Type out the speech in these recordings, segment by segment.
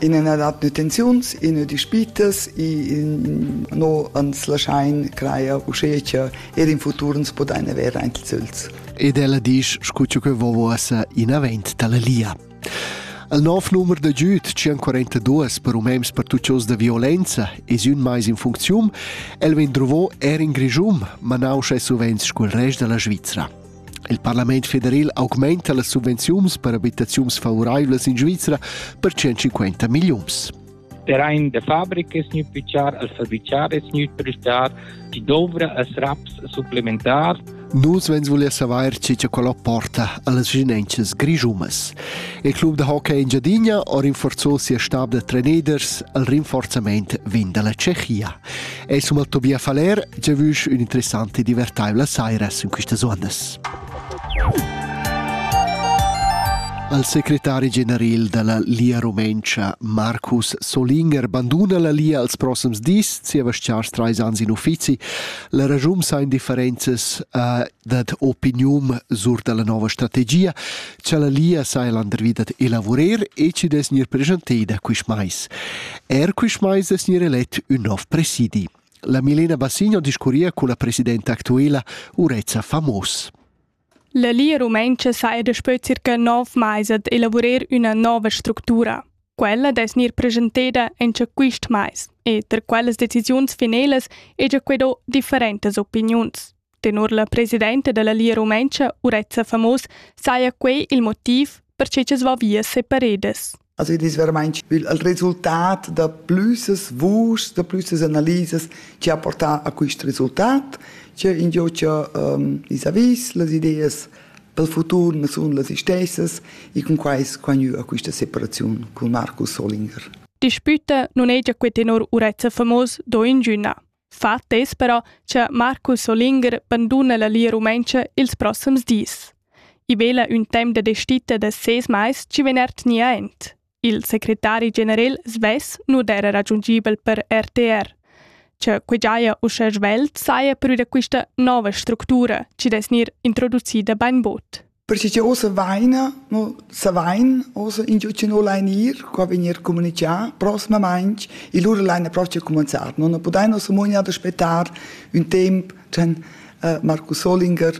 In ena dat nutenziuns, ina dispitas, in no ans laschain craia uschè che er in futur ans podain avair aint ils öls. Ed ella disch, scu che vovo essa inavent dalla lia. Al nov numer da giud 142 per umens pertuccios da violenza es ün mais in funcziun, el vegn drovo er in Grischum, ma nauscha e suvent scu'l rest da la Svizra. Il parlament federal augmenta las subvenziuns per abitaziuns favoraivlas in Svizra per 150 milliuns. Der ein der Fabrik es nicht bichar als verbichar es nicht prestar, die dovra als raps supplementar. Nus vens volia savair tge che quello porta a las vicinanzas grischumas. Il club da hockey in Giadina ha rinforzò sia stab da treneders al rinforzament vin dalla Tschechia. È summa Tobia Faler, già vusch un'interessante e divertaivla saira in questas ondas. Al secretari general della Lia Rumencha, Marcus Solinger, banduna la Lia als prossims dis, zieva stars trais ans in uffizi. La ragium sa indifferenzas uh, dad opinium sur dalla nova strategia. cha la Lia saja landervi dad elavurer e chi dess gnir preschanteida quist mais. Er quist mais es gnir elet ün nov presidi. La Milena Bassigno discurria con la presidenta actuela Urezza Famos. La Lia Rumentscha sa è daspö circa nov mais ad elavurer üna nova structura. Quella dess gnir presenteda in cha quist mais e ter quellas decisiuns finelas egia que do differentas opiniuns. Tenor la presidenta della Lia Rumentscha, Urezza Famos, saja quei il motiv per che es va via separedas. Also das ist vermeint il resultat da plüssas vuschs, da plüssas analisas che ha portà a quest resultat, che indio che um, is avis las ideas pel futur ma sun las istessas e con quai squagnü a questa separazione con Markus Solinger. Dispute non è già que tenor Urezza Famos do ingüna. fa attess però cha Marcus Solinger banduna la Lia Rumentscha ils prossims dis. I vela ün temp da destita da ses mais chi vegn ertgni aint. Il secretari general svess nu d'era raggiungibel per RTR. Che que giaja uschè svelt saja pür da quista nova structura chi dess gnir introducida bainbod. Perche cha ussa vaina, no savain ussa ingio chi no lain ir, qua vegnir comunichà prosmamaing e lura laina procha cumanzar. No na pudain ussa muognar d'aspettar ün temp chan eh, Markus Solinger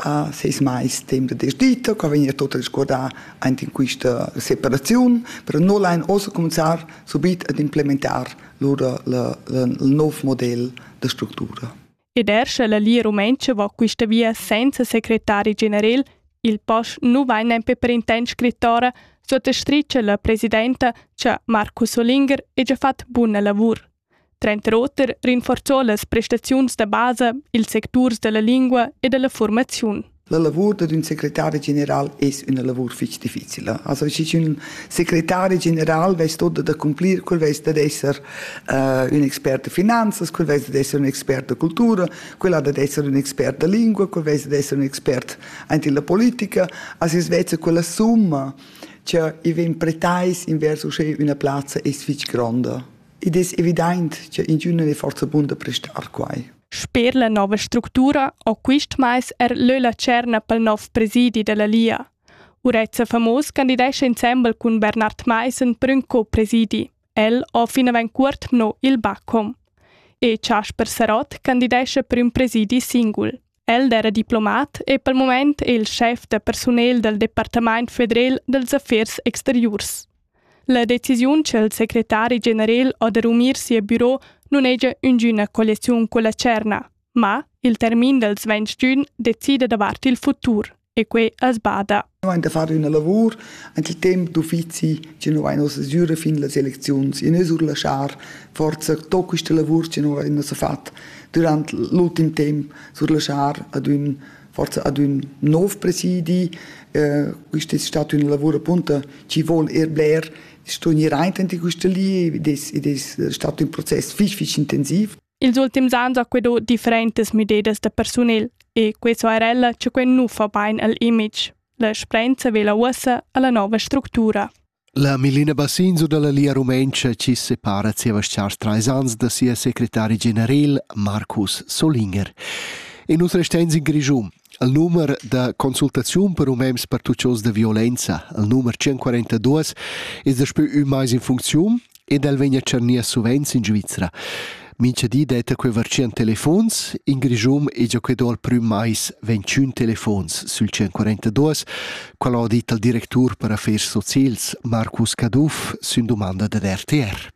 ha seis mais temp da desdita, qua vegnir tot resguardà aint in quista separaziun, però no lain ussa comanzar subit ad implementar lura la, la, il nov model da structura. ed er sche la Lia Rumentscha va quista via senza secretari generel, il pass nu vain nempe per intent scrittora, suottastricha la presidenta cha Markus Olinger hegia fat buna lavur. Trent'oter rinforzò las prestaziuns da basa, ils secturs da la lingua e da la fuormaziun. La lavur dad ün secretari general es üna lavur fich difficila. Also schi ün secretari general vess tot da cumplir, quel vess dad esser uh, ün expert de finanzas, quel vess dad esser ün expert de cultura, quel ha dad esser ün expert de lingua, quel vess dad esser ün expert anti la politica, as es vezza quella summa che i ven pretais invers usche üna plazza es fich gronda. Id es evident che in giunna è forza bun da prestar quai. Sper la nova structura ho quist mais er lö la tscherna pel nouv presidi da la Lia. Urezza Famos candidescha insembel cun Bernard Maissen prün co-presidi. El ho finavant cuort mno il Bacom. E Chasper Sarott candidescha prüm presidi singul. El era diplomat e pel moment è il schef da persunel dal Departamaint federal dals affers exteriurs. La decisiun che il secretari general ha da rumir sia biro nun haja üngüna colleciun culla tscherna, ma il termin dals ventg giün decida davart il futur e quai as bada. Noi han da far üna lavur ante il temp d'uffizi che noi vain ossa süre fin las elecziuns e nus urlaschar forza to quista lavur che noi vain ossa fat durant l'ultim temp surlaschar ad ün forza ad ün nov presidi. Eh, quist es stat ün lavur appunto chi vuol er bler sto gnir aint in quista li ed es, ed es stat ün process fich fich intensiv. Ils ultims ans ho quedò differentas müdedas da persunel e que so er ella cha quel nu fa bain al image. La sprenza vela uossa alla nova structura. La Milena Bassinzo dalla Lia Rumentscha chi separa zieva tschars trais ans da sia secretari generel Marcus Solinger. E nus restans in Grischun. Al numer da consultaziun per umens pertuccios da violenza, al numer 142, es daspö ün mais in funcziun ed el vegn a tschernir suvenz in Svizra. Mincha di detta quei vartschien telefons, in Grischum e già quei do al prüm mais 21 telefons sul 142, qual ha dit al directur per affers socials Marcus Caduff sün domanda dad RTR.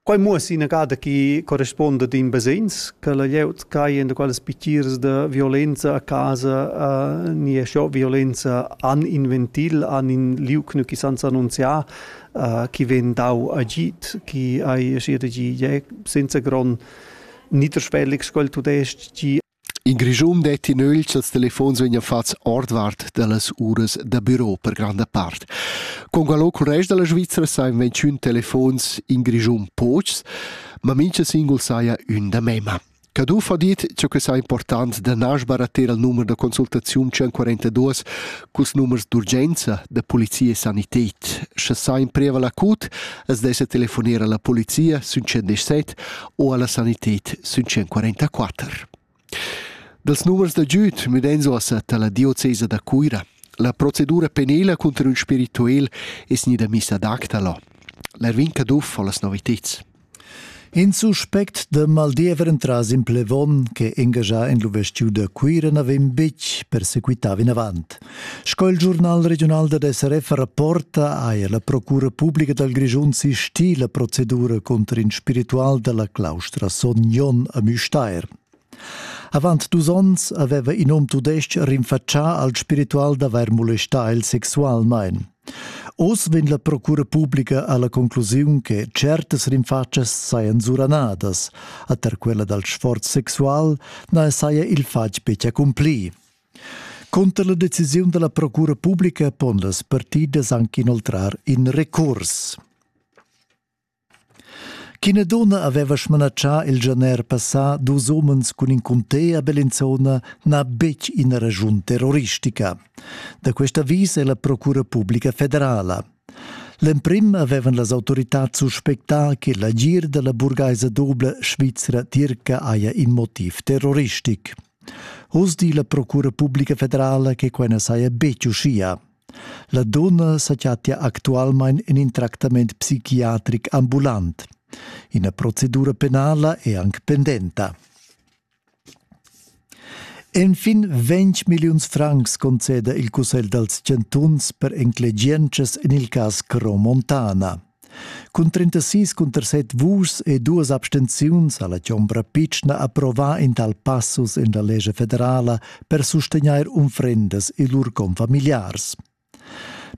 Quai muoss ina gada chi corresponda d'in basegns che la glieud cai in quelles piccirs de violenza a casa uh, nie scho violenza an in ventil, an in liuc nü chi sanza annunziar, uh, chi vegn dau agid, chi hai aschi da gi, ja, senza grond niederschwellig sco'l tudesc gi in Grischun detti nögl ch'els telefons vegnan fats ordvart dallas uras da büro per granda part. Con qualo cul rest della Svizzera sain ventschun telefons in Grischun pochs, ma mincha singul saja ün da mema. Caduff ha dit che quei sa important da nas barattar il numer da consultaziun 142 culs numers d'urgenza da polizia e sanität. Sche sa impreva la CUT, es dessa telefoner alla polizia sün 117 o alla sanität sün 144. Dals numers da giüd müdenzo assat alla diocesa da Cuira. La procedura penela contro il spirituel es gnida missa ad acta là. L'Erwin Caduff ho las noviteds. In suspect da maldiever entras in plevon che engagia en l'uvestiu da Cuira n'avem betg persequità vinavant. Sco il giornal regional da SRF rapporta, haja la Procura pubblica dal Grischun sistì la procedura contro in spiritual dalla claustra Son Jon a Müstair. Avant dus onns aveva in um tudestg rinfatschà al spiritual d'avair molestà el sexualmain. Oz vegn la procura publica alla conclusiun che certas rinfatschas sajan suranadas, a ter quella dal sforz sexual na saja il fatg betg accumpli. Cunter la decisiun della procura publica pon las partidas anche inoltrar in recurs. Ch'ina dunna haveva smanatschà il gener passà dus umens cun in cuntè a Bellinzona n'ha betg ina raschun terroristica. Da quest avis è la Procura publica federala. L'emprim avevan las autoritads suspectà che l'agir da la burgaisa dubla svizra tirca haja in motiv terroristic. Oz di la Procura publica federala che quai na saja betg uschia. La dunna sechattia actualmain en in tractament psichiatric ambulant. Ina procedura penala è anc pendenta. Enfin 20 milliuns francs conceda il Cussegl dals chantuns per enclegientschas en il cas Cro Montana. Cun 36 cunter 7 vuschs e duas abstenziuns ha la chombra pitschna approvà in tal passus in la lescha federala per sustegnair unfrendas e lur confamiliars.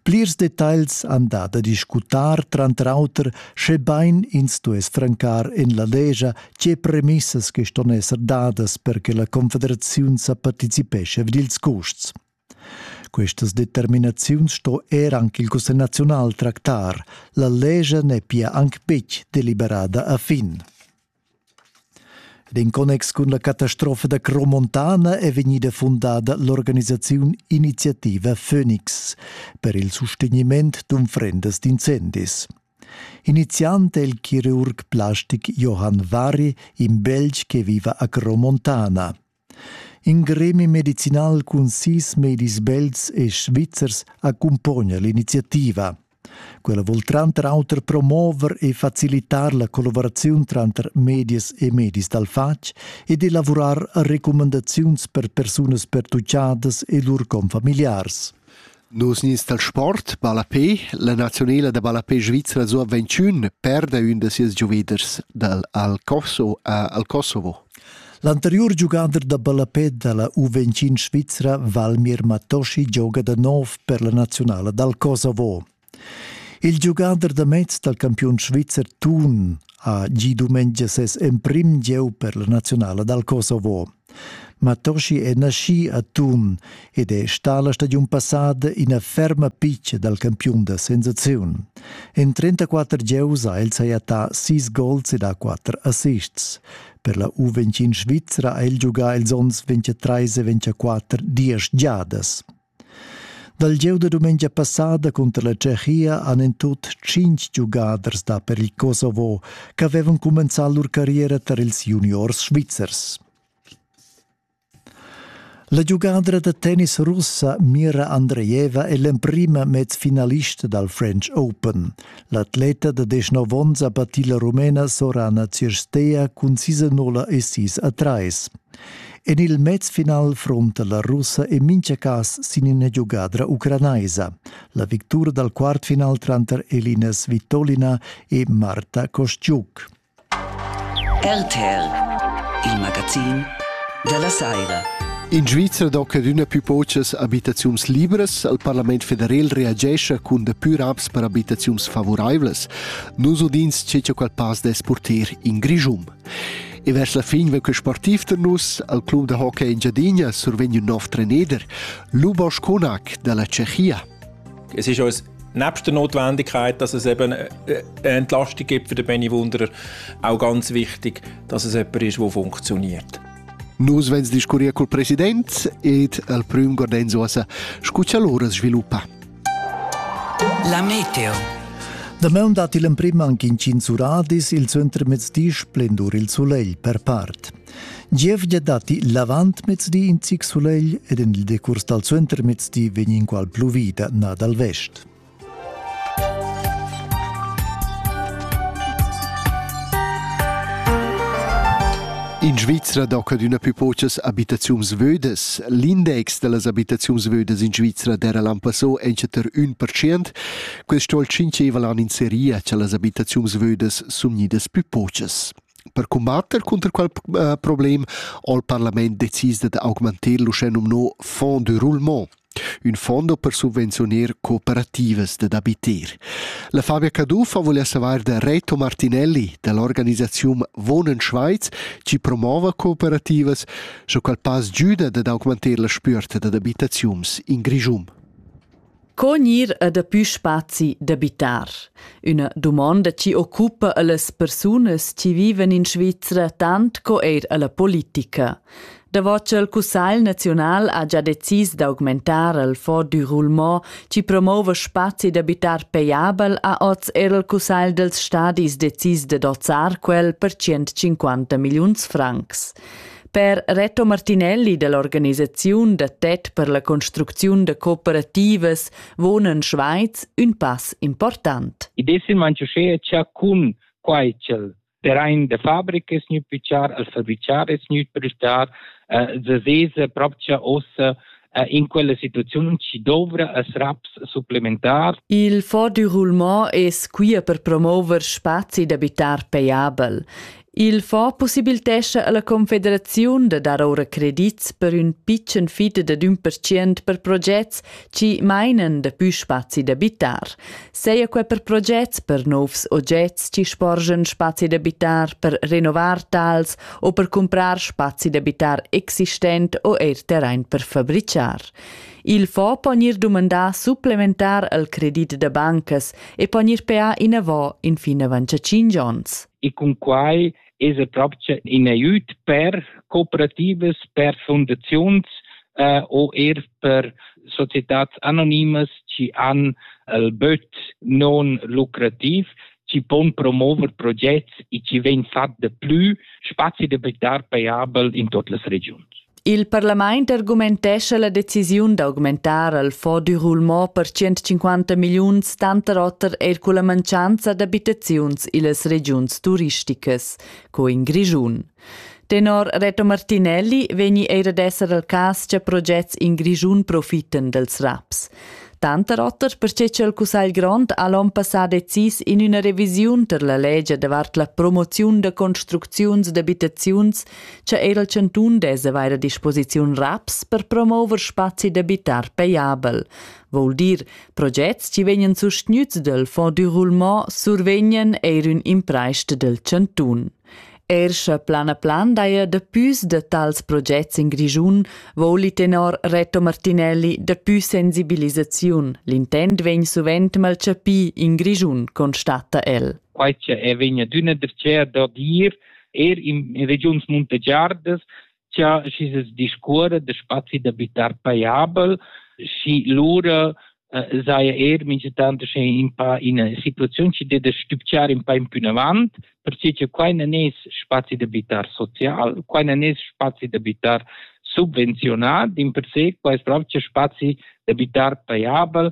Plirs detagls han da da discutar tranter auter, schebain ins stuess francar en la lescha tge premissas che ston esser dadas per che la Confederaziun sa participescha vid ils custs. Questas determinaziuns sto er anc il Cussegl naziunal tractar. La lescha n'è pia anc betg deliberada a fin. Ed in connex cun la catastrofa da Cromontana è vegnida fundada l'organisaziun Iniziativa Phoenix per il sustegniment d'unfrendas d'incendis. Iniziant è il chirurg plastic Johann Varri in Belg che viva a Cromontana. In gremi medicinal cun sis medis belts e svizzers accumpogna l'iniziativa. Quella vul tranter auter promover e facilitar la collaboraziun tranter medias e medis dal fatg ed elavurar recumandaziuns per persunas pertuccadas e lur confamiliars. Nus nies dal sport, ballapé, la naziunala da ballapé svizra Sur 21 perda ün da sias gioveders dal Alcoso a Alcosovo. L'anteriur giugader da ballapé da la U21 svizra Valmir Matoshi gioga da nov per la naziunala dal Kosovo. Il giugader da mezz dal campiun svizzer Thun ha gi dumengia ses emprim gieu per la naziunala dal Kosovo. Matoshi è naschì a Thun ed è stà la stagiun passada ina ferma pitga dal campiun da sensaziun. En 34 gieus ha el sajettà sis gols ed ha quatter assists. Per la U21 svizra ha el giugà ils onns 23 e 24 diesch giadas. Dal gieu da dumengia passada cunter la Tschechia han en tut tschintg giugaders da per il Kosovo ch'avevan cumenzà lur carriera tar ils juniors svizzers. La giugadra da tennis russa Mira Andrejeva è l'emprima mezfinalista dal French Open. L'atleta da 19 onns ha battì la Rumena Sorana Cirsteia cun sis a nul e sis a trais. En il mezfinal frunta la russa en mintga cas sin ina giugadra ucranaisa, la victura dal quartfinal tranter Elina Svitolina e Marta Kostiuk. RTL, il magazin della Saira. In Svizra do cadüna pü pochas abitaziuns libras, al Parlament federal reagescha cun da pü raps per abitaziuns favuraivlas. Nus udins che qual pass dess porter in Grischum. E vers la fin vegn quei sportiv da nus al club da hockey Engiadina survegniu nov treneder, Lubos Kunak dalla Tschechia. Es ist uns nebst der Notwendigkeit, dass es eben äh, eine Entlastung gibt für den Benny Wunder, auch ganz wichtig, dass es jemand ist, der funktioniert. Nus vens discurrir col president ed al prüm Gordenzo asa, scu cha lura sviluppa. La meteo. Damaun dat il emprim anc intgins uradis il suentermezdi splendur il sulegl per part. Gievgia datti l'avantmezdi in zic sulegl ed en il decurs dal suentermezdi vegn inqual pluvida na dal vest. In Svizra docca d'üna pü pochas abitaziuns vödas. L'index da las abitaziuns vödas in Svizra d'era l'an passò entschatter ün percent. Quest sto tschincheva l'an in seria cha las abitaziuns vödas sun gnidas pü pochas. Per combatter cunter quel uh, problem ho il parlament decis dad augmanter l'uschè nomnò Fonds de roulement. Ün fondo per subvenziuner cooperativas dad abiter. La Fabia Caduff vuless avair da Reto Martinelli da l'organisaziun Wohnen Schweiz chi promova cooperativas, sco qual pass giüda dad augmanter la spüerta dad abitaziuns in Grischun. Co gnir e dapü spazi d'abitar? Üna dumonda chi occupa a las persunas chi vivan in Svizra tant co eir a la politica. Davot ch'el Cussagl naziunal ha già decis d'augmentar il fond du roulement chi promouva spazi d'abitar payabel ha oz er il Cussagl dels stadis decis de dozzar quel per 150 milliuns francs. Per Reto Martinelli dell'organisaziun da TED per la construcziun de cooperativas wohnen Schweiz ün pass important. Id es il manchusché cha cun quai ch'el terrain de fabrica es gnü pitschar, al fabriciar es gnü prestar, eh, sesesa propcha ossa eh, in quella situaziun ci dovra as raps supplementar. Il Fond du Roulement es quia per promover spazi d'abitar paiabel. Il fond possibiltescha alla Confederaziun da dar ora credits per ün pitschen fid de 1% per progets Chi mainan daplü spazi da bitar, saja quai per progets per nouvs ogets chi sporgan spazi da bitar per renovar tals o per cumprar spazi da bitar existent o eir terrain per fabrichar. Il fo po gnir dumandà supplementar al credit da bancas e po gnir peà inavò infin avant 5 ons. E cun quai esa propcha in aiüt per cooperativas, per fundaziuns eh, o eir per societats anonimas chi han il böt non lucrativ chi pon promover progets e chi vegn fat de plü spazi d'abitare paiabel in tot las regiuns. Il parlament argumentescha la decisiun d'augmentar al fonds du roulement per 150 milliuns tanter oter eir culla mancanza d'abitaziuns illas regiuns turisticas, co in Grischun. Tenor Reto Martinelli vegni eir ad esser al cas cha progets in Grischun profiten dels raps. Tanter oter perche cha il Cussagl grond ha l'on passà decis in üna revisiun ter la legia davart la promoziun da construcziuns d'abitaziuns cha eir il chantun dess avair a disposiziun raps per promouver spazi d'abitar pajabel, voul dir, progets chi vegnan sustgnüts dal Fonds du roulement survegnan eir ün impraist del chantun. Er sche plan a plan daja dapüs da tals progets in Grischun, voli tenor Reto Martinelli dapü sensibilisaziun. L'intent vegn suvent mal chapì in Grischun, constata el. Quai che è vegna d'una dertgea da dir er in, in regiuns muntegiardas cha schi se discuora de spazi d'abitar paiabel schi lura äh, sei er mingetant sche in pa in situazion chi de stübciar in pa in pün avant perciò che quai non es spazi d'abitar social quai non es spazi d'abitar subvenzionat in per se quai es proprio spazi d'abitar paiabel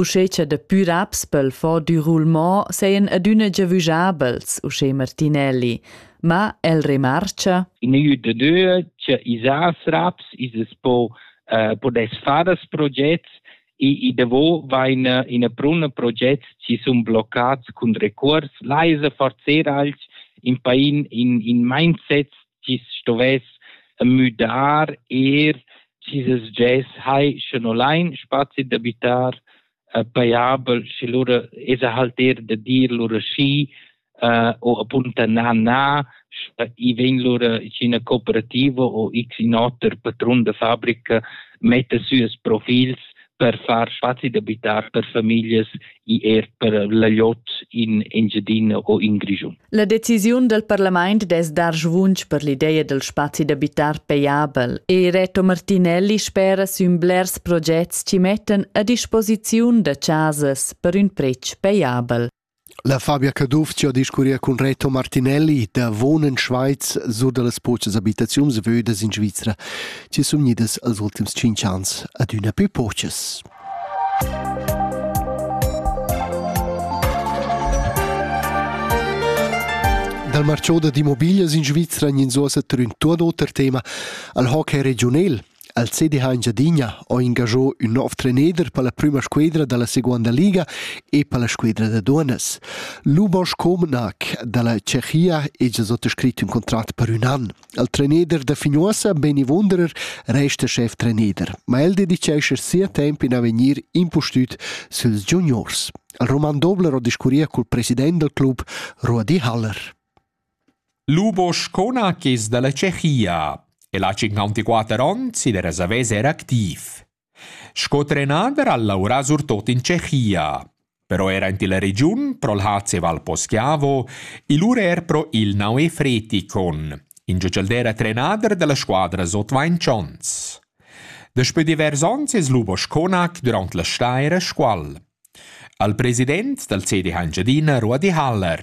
Uschè cha daplü raps pel fo dü roulement sajan adüna giavüschabels, uschè Martinelli. Ma el remarcha In EU de due, che isas raps, ises po eh, podes faras progets e, e devo vain eh, in a prun progets ci sun bloccats cun recurs, la esa forzer alch in pain in, in mindsets chi stovess müdar eir chi s'sgess hai sche no lain spazi d'abitar äh, paiabel sche lura esa halt er da dir lura schi äh, o appunta na na sche i vegn lura in cooperativa o x in oter patrun da fabrica metta sü as profils per far facil d'abitar per famiglias e er per l'agliot in Engiadina o in Grischun. La decisiun del parlament dess dar svunsch per l'ideia del spazi d'abitar payabel e Reto Martinelli spera sün blers progets chi mettan a disposiziun da chasas per ün pretsch payabel. La Fabia Caduff chi ho discurria cun Reto Martinelli davo ün Schweiz sur da las pochas abitaziuns vödas in Svizra chi sun gnidas els ultims tschinch ans adüna pü pochas. Dal marchà d'immobiglias in Svizra gnanzuossa trün tuot oter tema al hockey regiunel. El sedi ha Engiadina ho ingaschò ün nouv treneder per la prüma squedra da la seguonda liga e per la squedra da duonnas. Lubos Comenac da la Tschechia ha già sot scrit ün contrat per ün an. Il treneder da Fignuossa, Beni Wunderer, resta schef treneder, ma el dedichescha sia temp in avegnir impustüt süls juniors. Il Roman Dobler ho discurria cul president dal club, Ruadi Haller. Lubo Schona chi's da la Tschechia e l'ha 54 ons ed es avais eir activ. Sco trenader ha laurà surtot in Tschechia, però eir aint illa regiun pro'l HC Val Poschiavo e lura eir pro il Naue Fretikon, ingio ch'el d'eira trenader da la squadra sot vainch ons. Daspö divers ons es Lubo Schonac dürant la staira Scuol. Al president dal CDH Engiadina Ruedi Haller.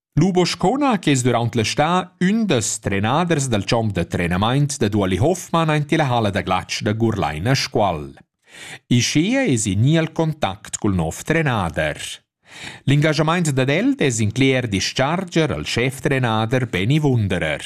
Lu Boscona che es durant l'està ün dels trenaders dal champ da trenamaint da Duoli Hofmann aint illa halla da glatsch da Gurlain a Scuol. Ischia es i gnì al contact cul nov trenader. L'ingajamaint dad el es incler discharger al schef-trenader Beni Wunderer.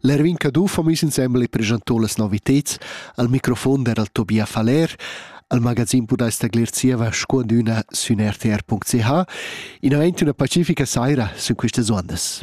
L'Erwin Caduff ha miss insembel e preschantò las novitads. Al microfon era il Tobia Faller, al magazin podais taglier zieva sco üna sün rtr.ch. In aint üna pacifica saira sun quistas uondas.